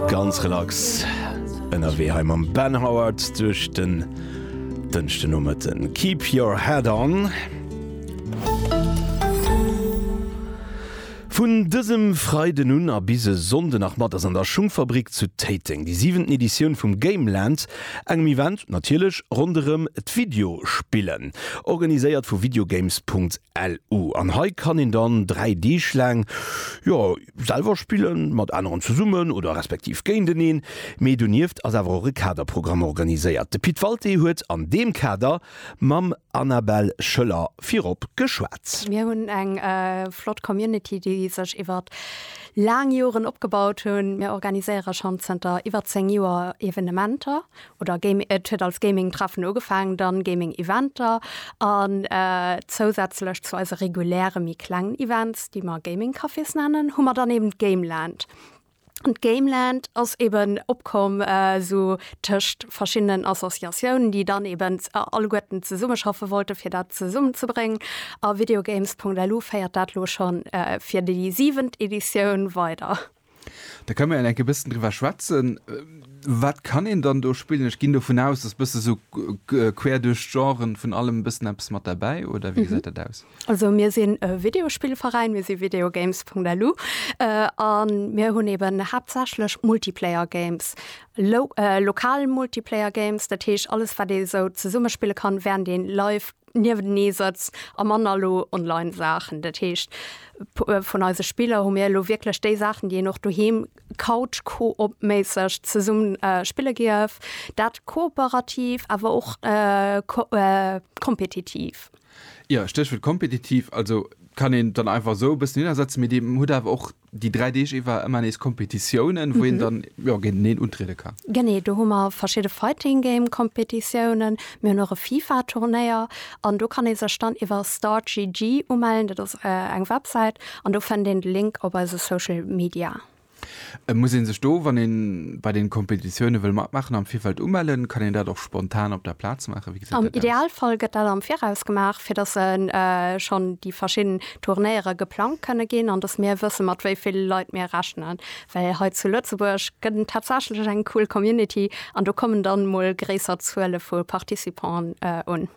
Ganz relax ënnerwee hei mam Ben Howard duerch den Dënschdenomëtten. Keep your head on. Vun dësem Freiden un a bis e Sonnde Nachmatt ass an der Schungfabrik zu Téiteng déi siwenten Editioun vum Gameland, engem Event natierlech ronderëm d'Videospillen, organiséiert vu videogames.lu. An hei kann een dann dräi Deeg laang, jo, selwer spillen, mat aneren zesummen oder respektiv géinteneen. Mee donieft ass awer och e Kaderprogramm organiséiert. De Pit Walté huet an deem Kader mam. Annabelle Schöller virop geschwat. Mir hunn eng flott Community, déi sech iwwert laang Joren opgebaut hunn. Mir organiséiere schonn zënter iwwer 10 Joer Evenementer oder Gaming, et huet als Gaming-Treffen ugefaangen, dann Gaming-Eventer an zousätzlech zu eise reguläre méi klengen Events, déi mer Gaming-Cafés nennen, hu mer dann eben d'Gameland. D'Gameland ass eben opkomm esou tëscht verschiddenen Associatiounen, déi dann eben alleguerten zesummeschaffe wollte fir dat zesummenzebréngen. A Videogames.lu féiert dat elo scho fir déi siwent Editioun weider. Da kënne mer enke bëssen driwwer schwätzen, wat kann een dann do spillen? Ech ginn dovun aus, dass bësse sou quer duerch d'Genren vun allem e bëssen eppes mat derbäi, oder wéi gesäit dat aus? Also mir sinn e Videospillveräin, mir si Videogames.lu a mir hunn eeben haaptsächlech Multiplayer-Games, lo lokal Multiplayer-Games, dat heescht alles, wat ee esou zesumme spille kann, wärend ee live niewentenee sëtzt a manner elo online Saachen. Dat heescht vun eise Spiller hu mir elo wierklech déi Saachen, déi een och doheem couch-coop-méisseg zesumme spille géif, dat kooperativ awer och ko kompetitiv. Jo, Stéchwuert kompetitiv. Also kann een dann einfach esou e bëssen hinnersetzen, mee Dir hutt awer och déi dräi Deeg iwwer ëmmer nees Kompetitiounen, wou een dann, jo, géinteneen untriede kann. Genee, do hu mer verschidde Fighting Game Kompetitiounen, mir hunn och e FIFA Turnéier an do kann ee sech dann iwwer StartGG umellen, dat ass eng Websäit an do fënnt een de Link op eise Social Media. Muss een sech do, wann een bei den Kompetitiounen wëll matmaachen, am Virfeld umellen? Kann een dat och spontan op der Plaz maachen? Wéi gesäit dat aus? Am Idealfall gëtt dat am Viraus gemaach, fir dass schonn déi verschidden Turnéiere geplangt kënne ginn an dass mir wëssen, mat wéi vill Leit mir rechnen. Well hei zu Lëtzebuerg gëtt en tatsächlech eng cool Community an do kommen dann emol gréisser Zuele vu Participanten un.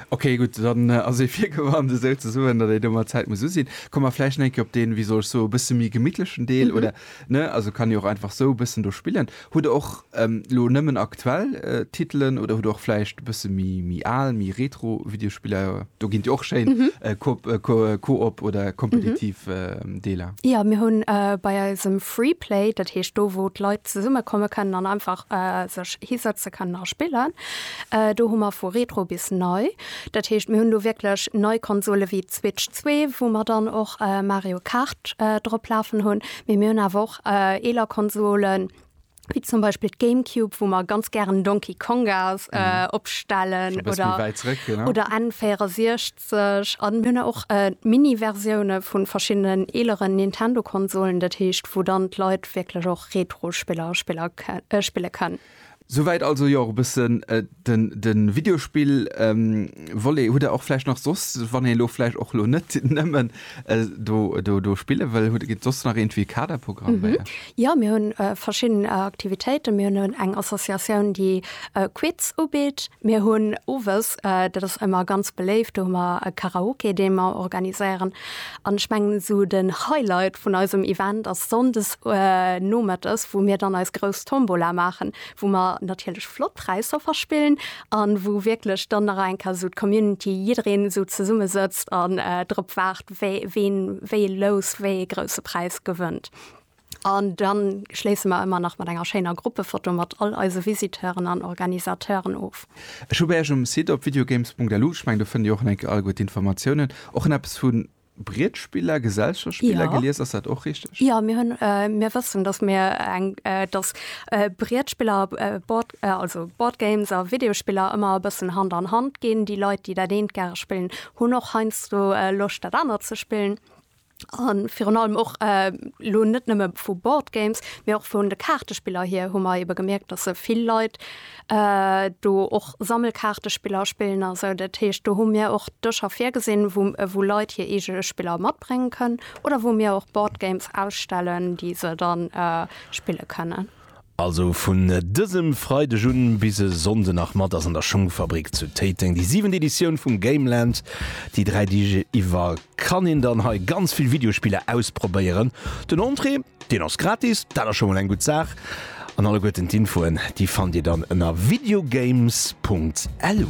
Ok, gutt, dann ass ee virgewarnt, esou ze soen, datt ee do mat Zäit muss u sinn. Komme mer vläicht eng Kéier op deen, wéi soll ech soe bësse méi gemittlechen Deel, oder ne, also kann ee och einfach esou e bëssen do spillen. Hutt Der och elo nëmmen aktuell Titelen oder hutt Der och vläicht e bësse méi al, méi retro Videospiller? Do ginn et jo och schéin Coop oder kompetitiv Deeler. Jo, mir hunn bei eisem Freeplay, dat heescht do, wou d'Leit zesummekomme kënnen an einfach sech hisëtze kënnen a spillen, Do hu mer vu Retro bis nei. Dat heescht, mir hunn do wierklech nei Konsole wéi d'Switch zwee, wou mer dann och Mario Kart drop lafen hunn. Mee mir hunn awer och eeler Konsolen, wéi zum Beispill d'Gamecube, wou mer ganz gären Donkey Konga opstellen oder N64. A mir hunn och Mini-Versioune vu verschiddenen eeleren Nintendo-Konsolen. Dat heescht, wou dann d'Leit wierklech och Retro-Spiller spille kënnen. Souwäit also jo och e bëssen de Videospill Volet. Hutt der och vläicht nach soss, wann een elo vläicht och elo net nëmmen do spille wëll, hutt der soss nach iergendwéi Kaderprogramm bei iech? Jo, mir hunn verschidden Aktivitéiten. Mir hunn eng Associatioun, déi Quiz ubitt. Mir hunn owes, dat ass ëmmer ganz beléift, do hu mer e Karaoke, dee mer organiséieren. An ech mengen esou den Highlight vun eisem Event ass Sonndes nomëttes, wou mir dann eis grouss Tombola maachen, wou mer natierlech flott Präisser verspillen an wou wierklech dann nach eng Kéier esou d'Community, jiddereen esou zesumme sëtzt an drop waart, ween wéi e Lous, wéi e grousse Präis gewënnt. An dann schléisse mer ëmmer nach mat enger schéiner Gruppefoto mat all eise Visiteuren an Organisateuren of. Ech hu bei Iech um Site op videogames.lu, ech mengen do fënnt Dir och enk all gutt Informatiounen, och en eppes vu Brietspiller, Gesellschaftsspiller, Jo, gelies. Ass dat och richteg? jo, mir hunn, mir wëssen, dass mir eng, dass Brietspiller, Board, also Boardgames a Videospiller ëmmer e bëssen Hand an Hand ginn. Déi Leit, déi dat eent gäre spillen, hunn och heiansdo Loscht, dat anert ze spillen. A virun allem och elo net nëmme vu Board Games, mee och vun de Kaartespiller hier hu mer ebe gemierkt, datt se vill Leit do och Sammelkaartespiller spillen a sou. Dat heescht, do hu mir och Dëscher virgesinn, wou, wou Leit hir eege Spiller matbréngen kënnen oder wou mir och Board Games ausstellen, déi se da spille kënnen. Also vun dësem Freideg un bis e Sonnde nach mat ass an der Schungfabrik zu Téiteng déi siwent Editioun vum Gameland. Déi 3 Deeg iwwer kann een dann hei ganz vill Videospiller ausprobéieren. Den Entrée, deen ass gratis, dat ass scho mol eng gutt Saach an alleguerten d'Infoen déi fannt Dir dann ënner videogames.lu.